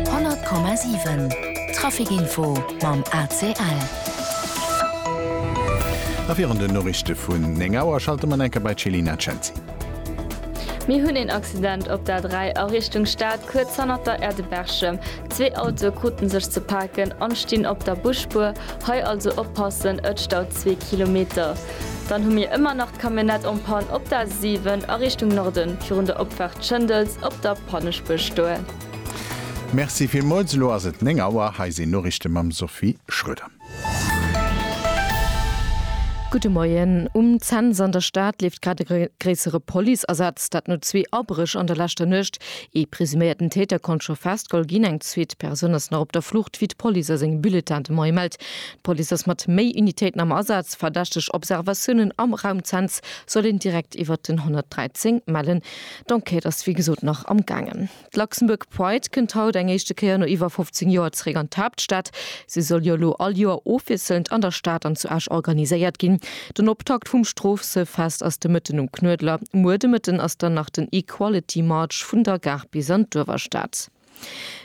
100,7 Traficinfo mam ACL. A virun den Noriichte vun 9 Auer schalte mer enker bei d'Chelina Cenci. Mir hunn een Accident op der 3 a Richtung Stad, kuerz hannert der Aire de Berchem. Zwee Autoe krute sech ze paken an stinn op der Busspuer. Hei also oppassen, et staut zwee Kilometer. Dann hu mir ëmmer nach d'Camionnette en panne op der A 7 a Richtung Norden, virun der Opfaart Schëndels op der Panneschbëschtour. Merci villmools. Elo ass et 9 Auer. Hei sinn Noriichte mam Sophie Schroeder. Gudde Moien. Um Cents an der Stad leeft grad e gréissere Policeasaz. Dat no zwee Abréch an der leschter Nuecht. Ee presuméierten Täter konnt scho festgeholl ginn. Eng zweet Persoun ass nach op der Flucht, wéi d'Police a sengem Bulletin de Moie mellt. D'Police ass mat méi Unitéiten am Asaz. Verdächteg Observatiounen am Raum Cents soll een direkt iwwert den 113 mellen. D'Enquête ass wéi gesot nach am gaangen. D'Luxembourg Pride kënnt haut eng éischte Kéier no iwwer 15 Joer zeréck an d'Haaptstad. Se soll jo elo all Joer ofwiesselnd an der Stad an zu Esch organiséiert ginn. Den Optakt vum Stroosefest ass de Mëtten um Knuedler. Muer de Mëtten ass dann nach den Equality March vun der Gare bis an d'Uewerstad.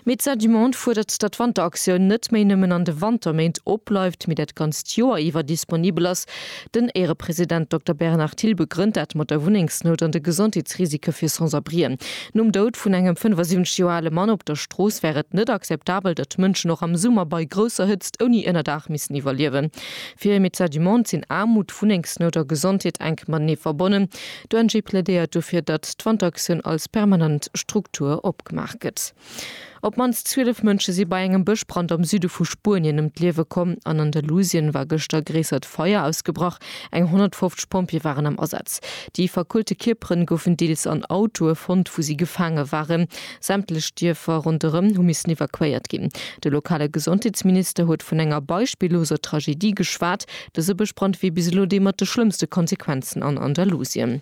Médecins du Monde fuerdert, datt d'Wanteraktioun net méi nëmmen an de Wanterméint opbleift, mee dat ganzt Joer iwwer disponibel ass. Den Éierepresident Dokter Bernard Thill begrënnt dat mat der Wunnengsnout an de Gesondheetsrisike fir Sans-abrien. Nom Doud vun engem 75 Joer ale Mann op der Strooss wär et net akzeptabel, datt Mënschen och am Summer bei grousser Hëtzt ouni Ënnerdaach missen iwwerliewen. Fir Médecins du Monde sinn Aarmut, Wunnengsnout a Gesondheet enk matenee verbonnen. D'ONG plädéiert dofir, datt d'Wanteraktioun als permanent Struktur opgebaut gëtt. Opgemaach gëtt. Op d'mannst 12 Mënsche si bei engem Bëschbrand am Süde vu Spuenien ëm d'Liewe komm an Andalusien war gëschter e gréissert Feier ausgebrach. Eng 150 Pompjeeë waren am Asaz. Déi verkuelte Kierpere goufen deels an Autoe fonnt, wou si gefaange waren. Sämtlech Dierfer ronderëm hu missen evakuéiert ginn. De lokale Gesondheetsminister huet vun enger beispilloser Tragedie geschwat. Dëse Bëschbrand wier bis elo dee mat de schlëmmste Konsequenzen an Andalusien.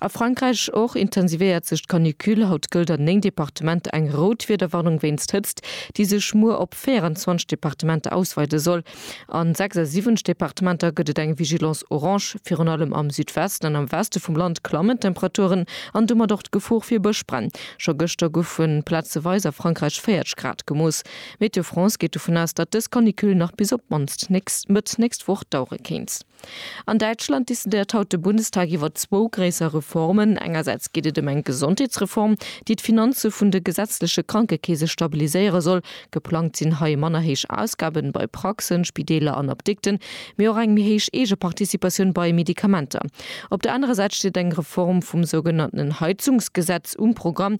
A Frankräich och intensivéiert sech d'Canicule. Haut gëllt an 9 Departementer eng rout Wiederwarnung wéinst Hëtzt, déi sech muer op 24 Departementer ausweide soll. A 76 Departementer gëtt et eng Vigilance orange. Virun allem am Südwesten an am Weste vum Land klammen d'Temperaturen an domat och d'Gefor fir Bëschbränn. Scho gëschter goufe plazeweis a Frankräich 40 Grad gemooss. Météo France geet dovun aus, datt dës Canicule nach bis op d'mannst Mëtt nächst Woch dauere kéint. An Däitschland decidéiert haut de Bundestag iwwer zwou gréisser Reformen. Engersäits geet et ëm eng Gesondheetsreform, déi d'Finanze vun de gesetzleche Krankekeese stabiliséiere soll. Geplangt sinn hei manner héich Ausgaben bei Praxen, Spideeler an Apdikten, mee och eng méi héich Eegeparticipatioun bei Medikamenter. Op der anerer Säit steet eng Reform vum sougenannten Heizungsgesetz um Programm.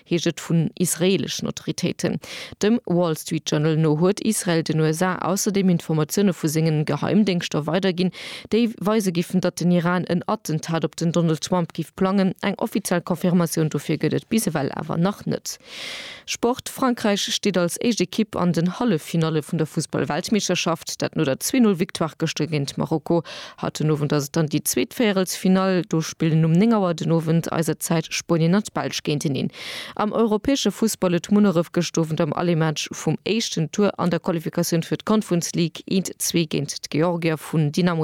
heescht et vun israeeleschen Autoritéiten. Dem Wall Street Journal no huet Israel den USA ausserdeem Informatioune vu senge Geheimdéngschter weiderginn, déi weise giffen, datt den Iran en Attentat op den Donald Trump géif plangen. Eng offiziell Confirmatioun dofir gëtt et bis ewell awer nach net. Sport, Frankräich steet als éischt Ekipp an den Halleffinalle vun der Fussball-Weltmeeschterschaft, dat no der Zwee-Null-Victoire gëschter géint Marokko. Haut den Owend ass et dann déi zweet Véierelsfinall. Do spillen um 9 Auer den Owend eiser Zäit Spuenien an d'Belsch géinteneen. Am europäesche Fussball huet Munneref gëscht Owend am Allé-Match vum éischten Tour an der Qualifikatioun fir d'Conference League eent Zwee géint d'Georgier vun Dynamo